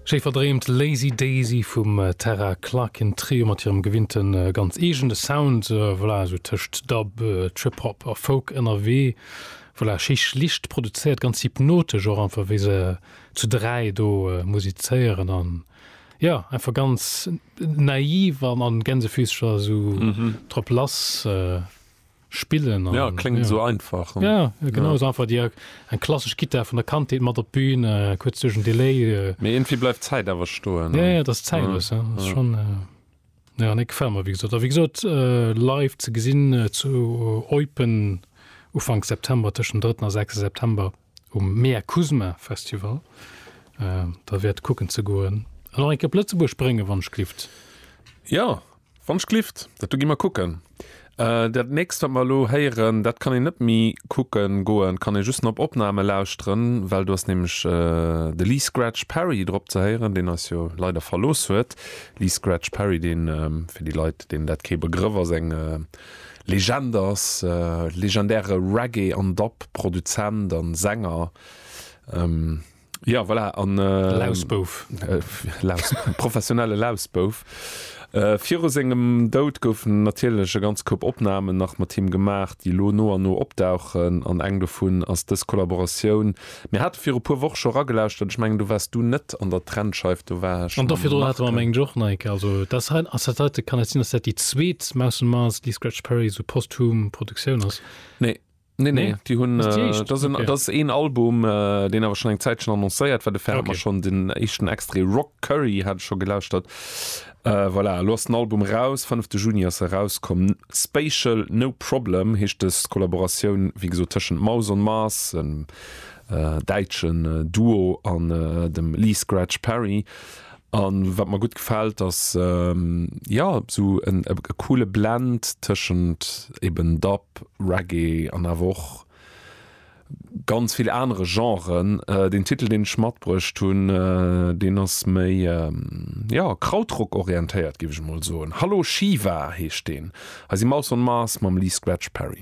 Schéi verdreemt Lazy Daisy vum Terra Klakin Trio mat hirem gewinnte ganz eegene Sound. Voilà, esou tëscht Dub, Trip-Hop a Folk ënnerwee. Voilà, schéi schlicht produzéiert, ganz hypnotesch och einfach, wéi se zu dräi do musizéieren. An jo, einfach ganz naiv an Gänsefüßcher esou drop lass. spillen an, ja kléngt esou einfach an, ja genau esou einfach déi eng klassesch Gittar vun der Kandheet mat op d'Bün, kuerz duerch en Delay, mee iergendwéi bleift d'Zäit awer stoen, ja ja dat ass zäitlos, ja dat ass schonn, ja nee gefält mer wéi gesot a wéi gesot live ze gesinn zu Eupen Ufank September, tëschent dem drëtten a sechste September. um Mea Kuzma Festival der wäert kucken ze goen an och eng Kéier op Lëtzebuerg bréngen, wann d'Schlift. Jo, wann d'Schlift, dat do gi mer kucken. Dat nächst, wat mer elo héieren, dat kann een net méi kucken goen, kann ee just nach op Opname lauschteren, well do ass nämlech de Lee Scratch Perry drop ze héieren, deen eis jo leider verlooss huet. Lee Scratch Perry, dee fir déi Leit, deenen dat kee Begrëff ass, eng Legend ass, legendäre Reggae an Dub Produzent an Sänger, jo voilà, an Lausbouf, professionelle Lausbouf. Viru sengem Doud goufen natierlech e ganz Koup Opnahmen nach mat him gemaach, déi lo no an no opdauchen, an eng dovun ass dës Kollaboratioun, Mir hate viru puer Woch scho ragelauschtert, ech mengen do wars du net an der Trennscheif, do war ech An do mam virdrun hate mer Marc. mengen ech och Neike, also dat ass hei, ass dat heite, kann dat sinn, datt dat déi zweet Mouse on Mars déi Scratch Perry esou posthum Produktioun ass? Nee, nee, nee, Nee? déi hunn, Ass déi éischt? dat ass en, Ok. dat ass een Album, deen awer schonn eng Zäitchen annoncéiert war, dofir hate mer Ok. schonn den éischten Extrait Rock Curry hate ech scho gelauschtert. Voilà, elo ass den Album raus, fënnefte Juni ass e rauskomm. Spatial No Problem heescht dës Kollaboratioun, wéi gesot, tëschent Mouse on Mars, en däitschen Duo, an dem Lee Scratch Perry. A wat mer gutt gefält, ass, jo, esou e coole Blend tëschent eben Dub, Reggae an awer och, ganz vill anere Genren. Deen Titel, deen ech matbruecht hunn, deen ass méi, jo, Krautrock-orientéiert, géif ech emol soen. Hallo Shiva heescht deen. Hei si Mouse on Mars mam Lee Scratch Perry.